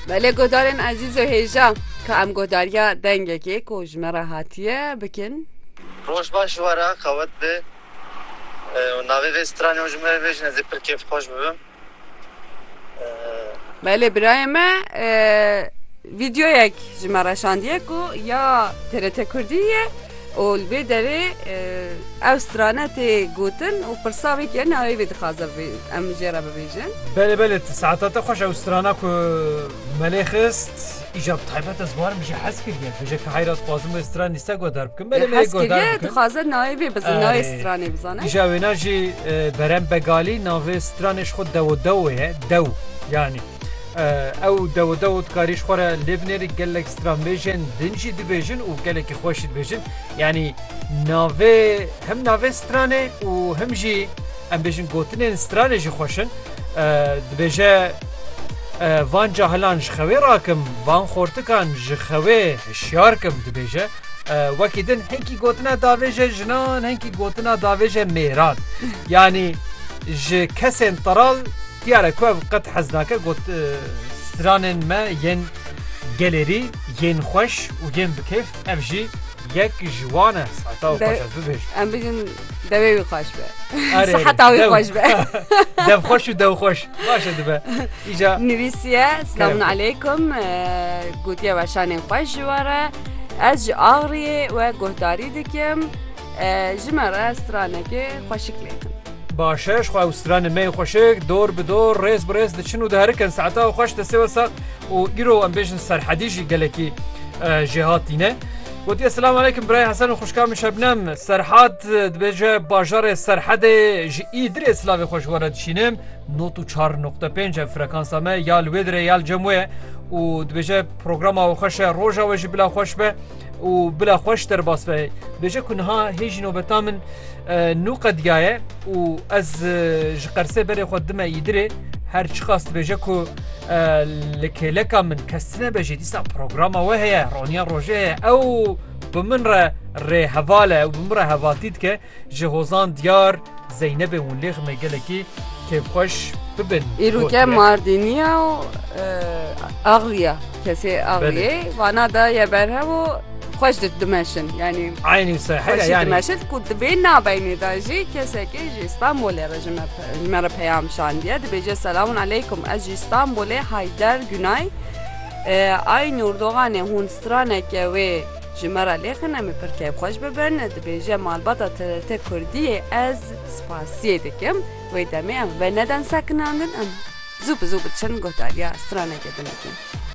Belê godarên ezîz û hêja ka em godariya dengekê ku ji me re hatiye bikin. Roj baş ji we re qewet be û navê vê stranê û ji me re bêjin ez ê pir kêfxweş bibim. Belê birayê me e, vîdyoyek ji me reşandiye ku ya TRT Kurdî ye. Û li vê derê ew strane tê gotin û pirsa wê ke navê wê dixwaze em jê re bibêjin. Belê belê ti saeta te xweş ew strana ku melê xist îcar taybet ez warim jî hez kiriye bije ke heyra dixwazim wê stran nîste godar bikim belê hez kiriye dixwaze navê wê bizin navê stranê bizane îja wêna jî berem begalî navê stranê ji xwe dewo dewo ye dew yanî Ew dew dew dikarî ji xwe re lê binêrî gelek stranbêjên din jî dibêjin û gelekî xweş jî dibêjin. Yanî navê him navê stranê û him jî em bêjin gotinên stranê jî xweş in. Dibêje van cahilan ji xewê rakim, van xortikan ji xewê hişyar kim dibêje. Wekî din hinkî gotina davêje jinan hinkî gotina davêje mêran. Yanî ji kesên teral Diyar e ku ev qet hez nake got stranên me yên gelêrî yên xweş û yên bi kêf ev jî yek ji wan e. Siheta wî xweş ez bibêjim. Em bijin devê wî xweş be. Erê, Siheta wî dew. xweş be. Dev xweş û dew xweş. Baş e dibe. Îca Nivîsiye Selamun Kerem. aleykum gotiye weşanên xweş ji we re ez ji Axriyê we guhdarî dikim ji me re stranekê xweşik lêkin. Başeş xwe û stranên me yên xweşik dor bi dor, rêz bi rêz diçin û diherikin. Saeta û xweş destê we sax û îro em bêjin serhedî jî gelekî jêhatîne. Gotiye Selam aleykum birayê Hesen û xwişka min Şebnem. Serhat dibêje bajarê Serhedê ji Îdirê silavê xwe ji we re dişînim. Not û çar noqte pênc ev frekansa me ya li wê dirê ya li cem wê ye û dibêje programa we xweş e roja we jî bila xweş be. û bila xwe ji derbas ve bêje ku niha hê jî nobeta min nû qediyaye û ez ji qersê berê xwe dime îdirê her çiqas dibêje ku li kêleka min kestine be jê dîsa programa we heye roniya rojê heye ew bi min re rê hevale û bi min re hevatî dike Ji hozan diyar Zeynebê û Lêxmê gelekî kêfxweş bibin. Îro ke Mardîniya û Axliya kesê Axliyê vana da ye berhev û xweş di dimeşin yanî Eynî sehera yanî dimeşin ku dibê nabeynê da jî kesekê ji Stenbolê re ji me re peyam şandiye dibêje selamun aleykum ez ji Stenbolê Heyder Gunay Eynûr doxanê hûn straneke wê Ji me re lêxin em ê pir kêfxweş bibin. Dibêje malbata TRT Kurdiyê ez spasiyê dikim. Wê demê em vê nedin sekinandin em zû bi zû biçin guhdariya stranekê binikin.